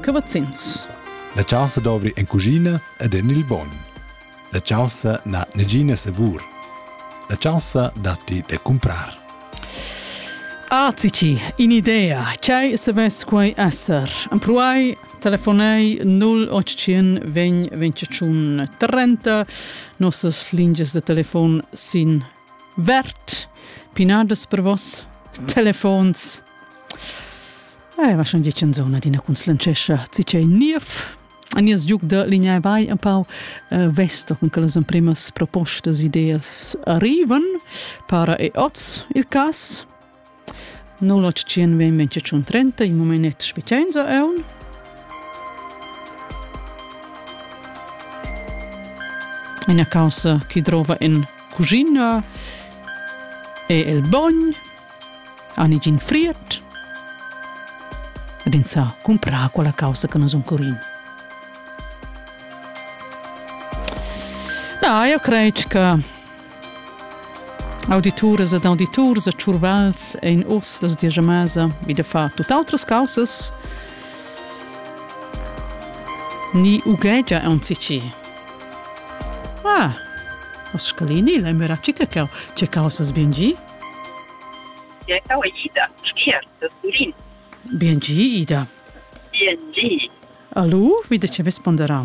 Cavazzins. La chaussa dovri en cuschina ed en il bogn. La chaussa n'ha negina savur. La chaussa datti da cumprar. Azici, in idea, chai savess quai esser? Ampruai, telefonei 0800 veng 25 30, nossas lingias de telefon sin Vert, pinadas per vos telefons. Eh, va schon dietschen zona d'ina cunslanchescha, cicei niev. A nies giuc da linea vai un pau uh, vesto con che las emprimas propostas ideas arrivan, para e oz il cas, 081 20 30 il momenet specienza eun Ina causa chi drova in cucina è il bogn, ani gin friert, ed in sa cumprar quella causa che nos un curin. Da, io credo che Audituras ed auditurs e tschurvals ein oz las diesch mesa vi da far tut outras causas ni ughegia aunzici. Ah, o scalini, la mera cica cau, ce causas bien gi? Ja cau è Ida, schier, das Tulin. Bien gi, Ida. Bien gi. Allo, wie de ce vesponderà?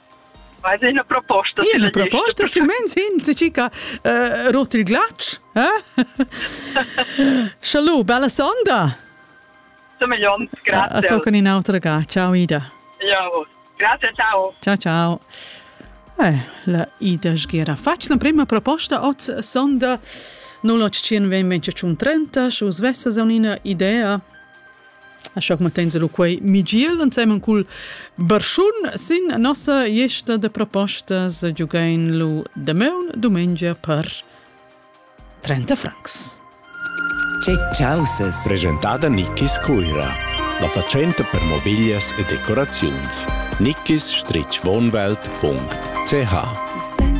Vai è una proposta. È una proposta, silmens hin, se cica uh, rot il glatsch. Eh? Schalu, bella sonda. Semeglion, grazie. A tocca in un'altra ga. Ciao Ida. Ciao. Grazie, ciao. Ciao, ciao. Eh, la Ida Sghera fatg la prima proposta oz sonda 0815 30 u svessa za un'idea A schoc mantenza lu quei Migiel ensemen cul Barschun sin nossa gliesta de propostas giugain lu damaun dumengia per 30 francs. Che causes! Presentada Nickis Cuira. La fatschenta per mobiglias e decoraziuns. Nickis-wohnwelt.ch